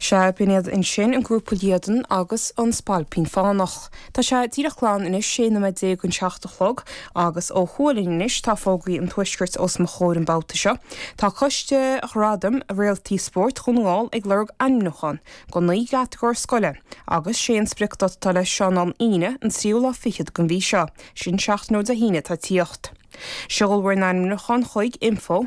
Sea, b'in iad ansin, an grúpa Liadan agus an Spailpín Fánach. Tá sé díreach glan anois, 16 nóiméad don seacht a chlog, agus ó thuaidh linn anois tá fógraí an Tuaiscirt os mo chomhair an babhta seo. Tá Coiste Ghradaim Réaltaí Spóirt Dhún na nGall ag lorg ainmniúchán do naoi gcatagóir scoile, agus sé an spriocdháta atá leis sin ná an Aoine, an tríú lá fichead den mhí seo, sin seachtain ó Dé hAoine, atá ag tíocht. Seolfar an ainmniúchán chuig, info,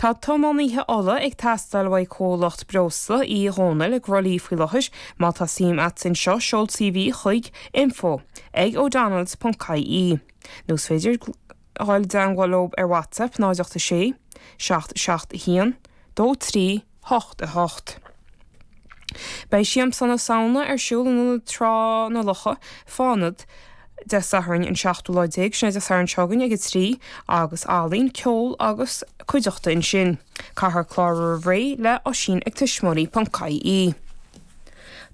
Tá tiománaithe ola ag teastáil uaidh comhlacht breosla Uí Dhónaill i gCroithlí faoi láthair. Má tá suim agat anseo, seol CV chuig info ag odonnells.ie. Nó is féidir dhul i dteangmháil leo ar WhatsApp 086 771 23 hocht a hocht. Beidh Siamsa na Samhna ar siúl in Ionad Trá na Locha, Fánad, Dé Sathairn an seachtú lá déag, sin é Dé Sathairn seo chugainn, ag a trí, agus ealaín, ceol agus cuideachta ansin. Caithfear clárú roimh ré le Oisín ag tuismitheoirí.ie.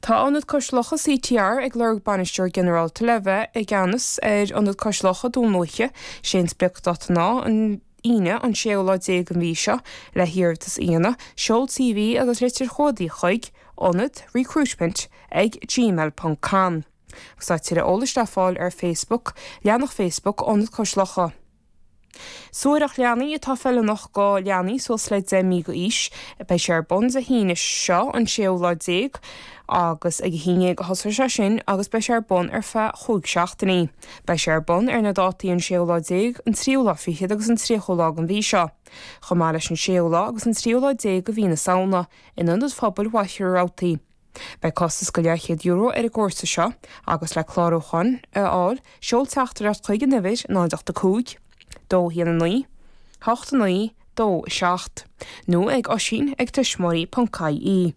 Tá Ionad Cois Locha CTR ag lorg Bainisteoir Ginearálta le bheith i gceannas ar Ionad Cois Locha, Dún Lúiche. Is é an spriocdháta ná an. Aoine, an séú lá déag den mhí seo, le hiarratas a dhéanamh, seol CV agus litir chumhdaigh chuig, ionad, recruitment ag gmail ponc com. Tá tuilleadh eolais le fáil ar Facebook, leathanach Facebook Ionad Cois Locha. Suathaireacht Leanaí atá feiliúnach do leanaí suas le 10 mí d'aois. Beidh sé ar bun Dé hAoine seo, an séú lá déag, agus ag a haon déag a thosóidh sé sin agus beidh sé ar bun ar feadh chúig seachtainí. Beidh sé ar bun ar na dátaí an séú lá déag, an tríú lá fichead agus an tríochú lá den mhí seo, chomh maith leis an séú lá agus an tríú lá déag de mhí na Samhna, in Ionad Phobail Mhachaire Rabhartaigh. Beidh costas de leathchéad euro ar an gcúrsa seo, agus le clárúchán a fháil seol teachtaireacht chuig an uimhir 085 219 8927 nó ag oisín ag tuismitheoirí.ie.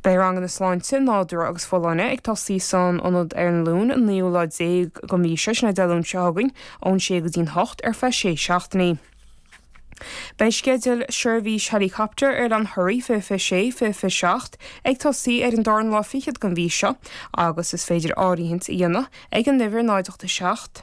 Beidh ranganna sláinte, nádúr agus folláine ag tosaí san ionad ar an Luan an naoú lá déag den mhí seo, sin é Dé Luain seo chugainn, ón sé go dtí'n hocht ar feadh sé seachtainí. Beidh sceideal seirbhís héileacaptair Oileán Thoraí 2026, 2027 ag tosaí ar an darna lá fichead den mhí seo agus is féidir áirithint a dhéanamh ag an uimhir 0 8 7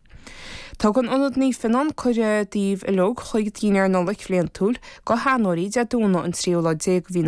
Tugann Ionad Naomh Fionnán cuireadh daoibh uilig chuig Dinnéar Nollag Bhliantúil, do sheanóirí, Dé Domhnaigh an 3ú lá déag de mhí na.